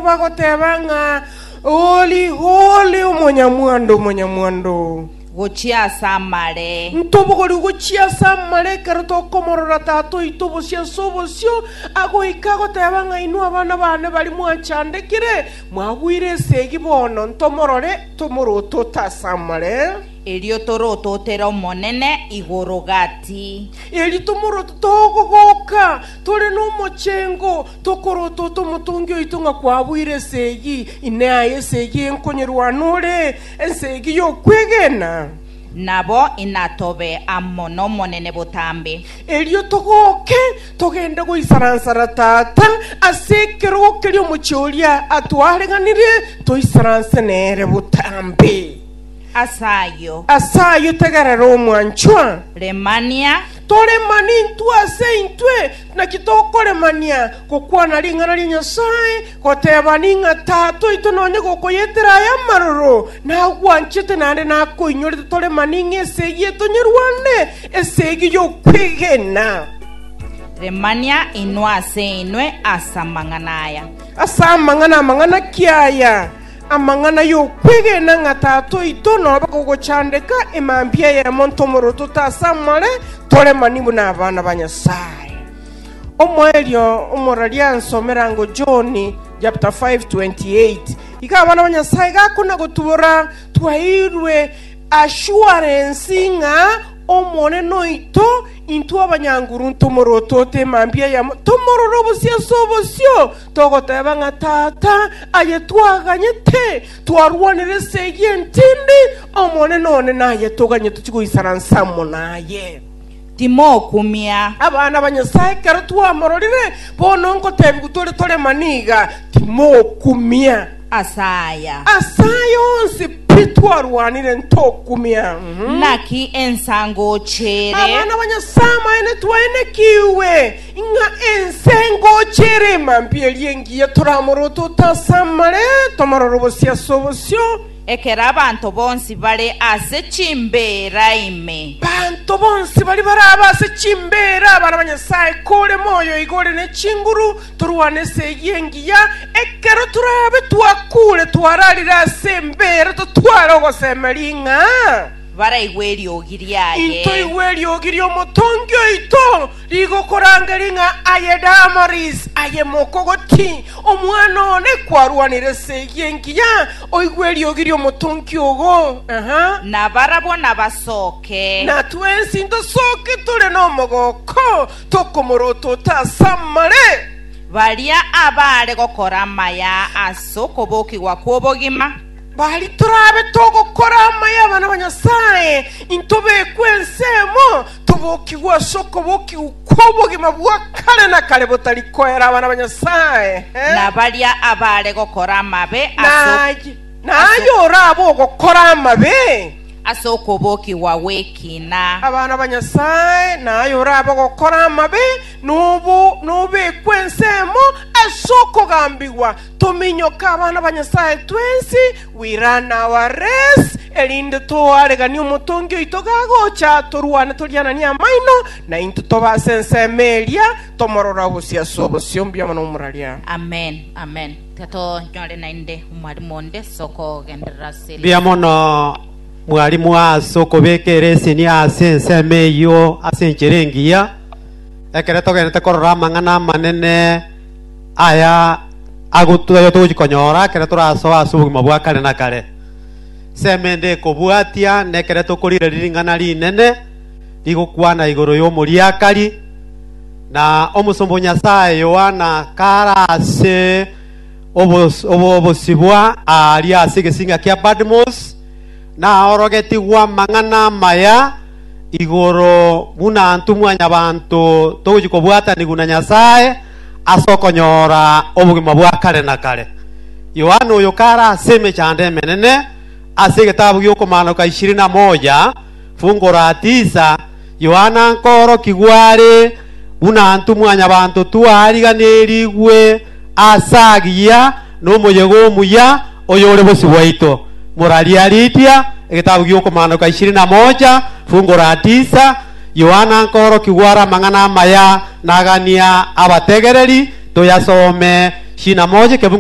Bagoteba ng'a, Holy, holy, Omonyamwando, Omonyamwando. Gochia ase amare. Ntobogori gochia ase amare ekero tokomorora Tata oito bosio ase obosio, agoika agoteba ng'a, Inwe abana bane baria mwachandekire, mwagwire esegi bono, ntomorore, tomorotote ase amare, Erio torototere Omonene igoro gati. erio tomorotote ogogoka tore nomochengo, Tokorota ote omotongi oito ng'a kwabuire esegi ine aye, esegi enkonyerwana ore, esegi y'okwegena. Nabo inatobe amo n'Omonene botambe. Erio togoke, togende goisaransara tata ase ekerogo keria omochie oria atwareganire, toisaranse nere botambe. Ase ayio. Ase ayio tegerera, omwanchwa. Remania. Torema nintwe ase intwe, naki tokoremania gokwana ring'ana ria Nyasae, goteba ning'a Tata oito nonye gokoyetera aya amaroro, nagwanchete naende nakoinyorete torema ning'a esegi ye tonyerwane, esegi y'okwegena. Remania inwe ase inwe ase amang'ana aya. Ase amang'ana amang'ana ki aya? Amang'ana y'okwegena ng'a Tata oito nobe kogochandeka e mambia ya monto omoroto te ase amare, tore mani buna abana ba Nyasae. Omoerio omoraria ansomere ango John chapter 5 28. Iga abana ba Nyasae gakona gotubora twaeirwe assurance ng'a Omonene oito intwe abanyanguru ntomorotote e mambia ya monto omororo bosio ase obosio, Togoteba ng'a Tata aye twaganyete, twarwanire ase eyio entimbe, Omonene one naye toganye tochie goisana nsemo naye. Timokumia. Abana ba Nyasae ekero twamororire, bono ngotebiwu tore tore maniga, Timokumia. Ase aya. Ase aya onsi pi twarwanire ntokumia. Mhm. Naki ensa ngochire. Abana ba Nyasae amaene twaenekigwe. Ng'a ense ngocha ere emambi eria engiya toramorote otasamare, tomorore bosio ase obosio. Ekero abanto bonsi bare ase chimbeera ime. Abanto bonsi baria barabe ase chimbeera, abana ba Nyasae, kore moyo iga ore ne chinguru, torwane ense eyio engiya. Ekero torabe twakuure, twararire ase embeera, totware ogosemeria ng'a. Baraigwe eriogi riaye. Intoigwe eriogi ri'omotongi oito. Nigo korangeria ng'a aye Damaris, aye mokogoti, omwana one kwarwanire ase eyio engiya, oigwe eriogi ri'omotonki ogo, aha, na barabwo nabasoke. na twensi ntosoke tore nomogooko, tokomorotota ase amare. Baria abaare gokora amaya ase okobokigwa kw'obogima. Bari torabe togokora amaya abana ba Nyasae, intobekwe ensemo, tobokigwe ase okobokigwa kw'obogima bwa kare na kare botari koera abana ba Nyasae. Eh? Na baria abaare gokora amabe ase ok- Naye naye orabe ogokora amabe ase okobokigwa gw'ekina. abana ba Nyasae, naye orabe ogokora amabe nobo nobekwe ensemo ase okogambigwa Tominyoke abana ba Nyasae twensi, we run our race, erinde toare gani omotongi oito gagocha, torwane toriananie amaino, na intwe tobe ase ensemo eria, tomorore obosio ase obosio. Mbiama nomuraria. Amen, amen. Tiga tonyore naende omwalimu onde ase okogenderera ase Mbuya eriogi. mono mwalimu ase okobeka ereseni ase ensemo eyio ase enchera engiya ekero togenderete korora amang'ana amanene aya agotu- ayo togochi konyora ekero torasoa ase obogima bwa kare na kare. Semende ekobwatia nekere tokorigereria ring'ana rinene rigokwana igoro y'omoriakari, na omosomba o Nyasaye Yohana kare ase obos- obo- obosibwa aaria ase egesinga kia Patmos, Naorogetigwe amang'ana amaya igoro buna intwe mwanyabanto togochia kobwatanigwa na Nyasae ase okonyora obogima bwa kare na kare. Yohana oyo kare ase emechando emenene ase egetabu gi'okomaanoka ishirini na moja fungu la tisa, Yohana nkoorokigwa are buna ntwe mwanyabanto twariganerigwe aase agiya nomoyega omuya oyore bosio bwaito. Morariaridia egetabu gi'okomanoka ishirini na moja, fungu la tisa, Yohana nkoorokigwa are amang'ana amaya nagania abategereri. Toyasome ishirini na moja, ekefungu